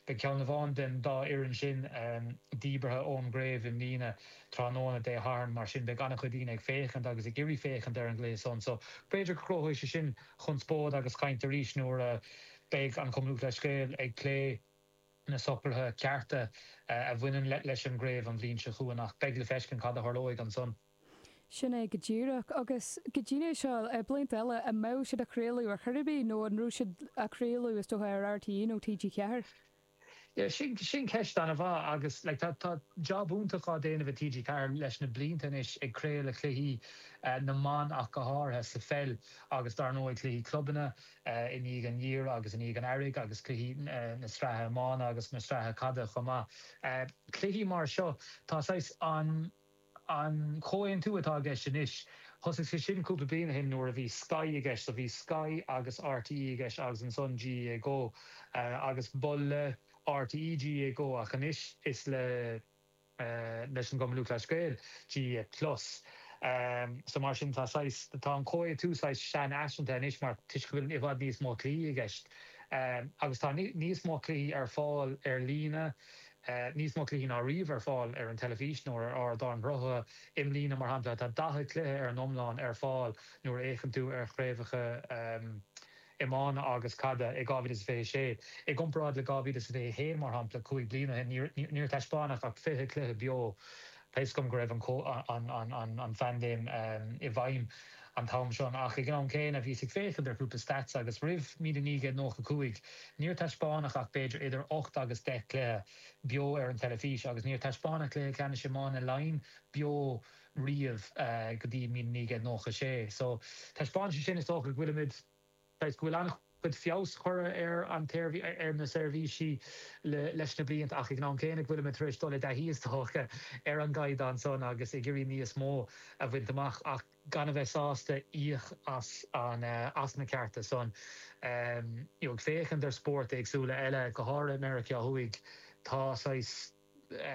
Beidh ceann amháin den dá fhoireann sin díbeartha ón gcraobh i mbliana tráthnóna Dé Sathairn, mar sin beidh an-chuid daoine ag féachaint agus ag iarraidh féachaint ar an gcluiche san so b'fhéidir go gcruthóidh sé sin conspóid agus caint arís nuair a bheidh an Cumann Lúthchleas Gael ag plé na socruithe cearta a bhaineann leis an gcraobh an bhliain seo chugainn ach beidh le feiscint cad a tharlóidh ansan. Sin é go díreach. Agus go dtí seo, blianta eile, an mbeadh siad á chraoladh ar chor ar bith nó an raibh siad á chraoladh, is dócha, ar RTÉ nó TG4? Yeah, sin ceist an-mhaith agus like tá job iontach á déanamh ag TG4 leis na blianta anois ag craoladh cluichí na mban ach go háirithe sa pheil agus dár ndóigh cluichí clubanna i ndiaidh an gheimhridh agus i ndiaidh an Earraigh agus cluichí na sraithe iomána agus na sraithe caide chomh maith. Cluichí mar seo, tá saghas An comhaontú atá i gceist anois, thosaigh sé sin cúpla bliain ó shin nuair a bhí Sky i gceist. So bhí Sky agus RTÉ i gceist agus ansan GAA Go agus ba le RTÉ GAA Go ach anois is le leis an gCumann Lúthchleas Gael GAA Plus. So mar sin tá saghas, tá an comhaontú saghas seanfhaiseanta anois mar toisc go bhfuil i bhfad níos mó cluichí i gceist agus tá níos mó cluichí ar fáil ar líne, níos mó cluichí ná riamh ar fáil ar an teilifís nó ar ardáin sruthaithe i mbliana, mar shampla. Tá 40 cluiche ar an iomlán ar fáil nuair a fhéachann tú ar chraobhacha iomána agus caide i 2026. I gcomparáid le 2021, mar shampla, cúig bliana ó shin, níor taispeánadh ach 20 cluiche beo Tá 'fhios agam go raibh an phaindéim i bhfeidhm an t-am sin ach ag an am céanna bhíos ag féachaint ar chúpla stats agus roimh 1995 níor taispeánadh ach b'fhéidir idir ocht agus deich gcluiche beo ar an teilifís agus níor taispeánadh Cluiche Ceannais Iomána Laighean beo riamh go dtí 1996 so taispeánann sé sin is dócha go bhfuilimid Toisc go bhfuil an-chuid feabhas curtha ar na seirbhísí leis na blianta ach ag an am céanna go bhfuilimid tar éis dul i dtaithí, is dócha, ar an gcaighdeán san agus ag iarraidh níos mó a bhaint amach ach gan a bheith sásta íoc as na cearta san. Ag féachaint ar spóirt éagsúla eile, go háirithe i Meiriceá Thuaidh, tá saghas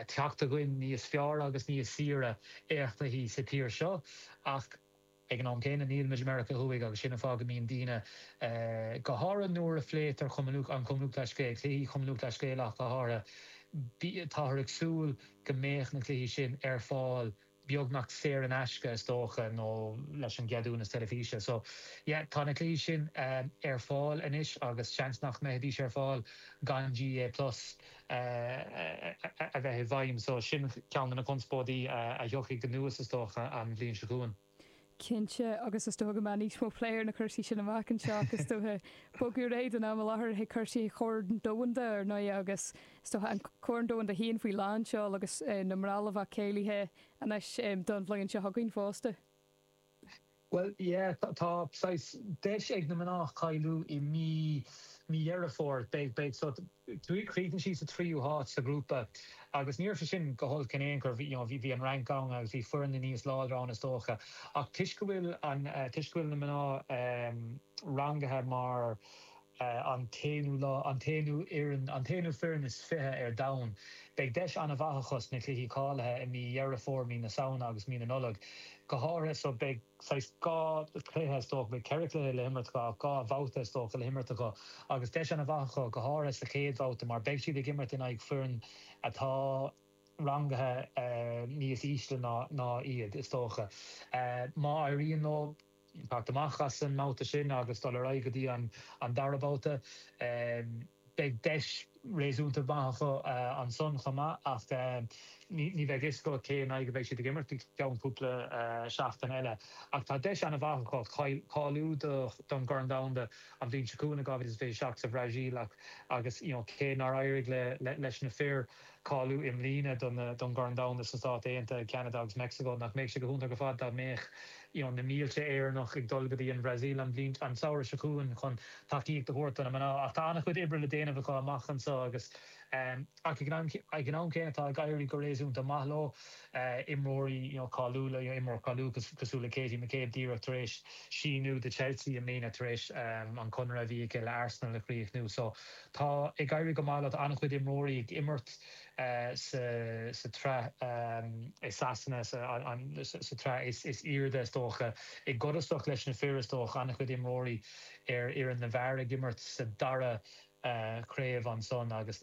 teacht againn níos fearr agus níos saoire eachnaithe sa tír seo ach, Ag an am céanna níl muid i Meiriceá Thuaidh agus sin an fáth go mbíonn daoine, go háirithe nuair a phléitear Cumann Lúthchleas Gael, cluichí Chumann Lúthchleas Gael ach go háirithe, táthar ag súil go mbeadh na cluichí sin ar fáil beagnach saor in aisce is dócha nó leis an gceadúnas teilifíse. So yeah tá na cluichí sin ar fáil anois agus seans nach mbeidís ar fáil gan GAA plus. a bheith i bhfeidhm, so sin ceann de na conspóidí a thiocfaidh anuas, is dócha, an bhliain seo chugainn. Cinnte, agus is dócha go mbeidh níos mó plé ar na cúrsaí sin amach anseo ach is dócha, bogadh ar aghaidh don am i láthair, chuig cúrsaí an Choirn Domhanda, ar ndóighe, agus is dócha, an Corn Domhanda féin faoi lánseol agus na mná, ábhar cáilithe anois don bhliain seo chugainn fosta. Bhuel, yeah, tá saghas deis ag na mná cáiliú i mí, mí Dheireadh Fómhair, beidh, beidh, so chríochnaigh sí sa tríú háit sa ghrúpa agus ní raibh sé sin go holc in aon chor, you know, bhí an Fhrainc ann agus bhí foirne níos láidre ann is dócha ach toisc go bhfuil an, toisc go bhfuil na mná rangaithe mar. an t-aonú lá, an t-aonú fhoireann, an t-aonú foireann is fiche ar domhan. Beidh deis an-mhaith acu sna cluichí cáilithe i mí Dheireadh Fómhair, mí na Samhna agus mí na Nollag go háirithe so beidh saghas dhá chluiche, is dócha, beidh ceithre chluiche le himirt acu ach dhá bhabhta, is dócha, le himirt acu agus deis an-mhaith acu go háirithe sa chéad bhabhta mar beidh siad ag imirt in aghaidh foireann atá rangaithe níos ísle ná iad, is dócha. Má éiríonn leo. Teacht amach as an mbabhta sin agus dul ar aghaidh go dtí an dara babhta. Beidh deis réasúnta maith acu ansan chomh maith ach ní bheidh a fhios agat cé in aghaidh a bheidh siad ag imirt go ceann cúpla seachtaine eile. Ach tá deis an-mhaith acu cáiliú don gCorn Domhanda an bhliain seo chugainn i 2027 sa Bhrasaíl agus cé nár éirigh leis na fir Cáiliú i mbliana don gCorn Domhanda sna Stáit Aontaithe, Ceanada agus Meicsiceo. Nach mbeadh sé go hiontach ar fad dá mbeadh na mílte Éireannach ag dul go dtí an Bhrasaíl an samhradh seo chugainn chun tacaíocht a thabhairt do na mná. Ach tá an-chuid oibre le déanamh acu amach anseo agus ag an am céanna tá ag éirí go réasúnta maith leo. Imreoirí cáiliúla, imreoir cáiliúil cosúil le Katie McCabe díreach tar éis síniú do Chelsea i mbliana tar éis an conradh a bhí aici le Arsenal a chríochnú. Tá ag éirí go maith le an-chuid imreoirí ag imirt sa tsraith i Sasana, sa tsraith is airde is dócha, i gcontrárthacht leis na fir is dócha, an-chuid imreoirí ar fhoireann na bhfear ag imirt sa dara chraobh ansan agus,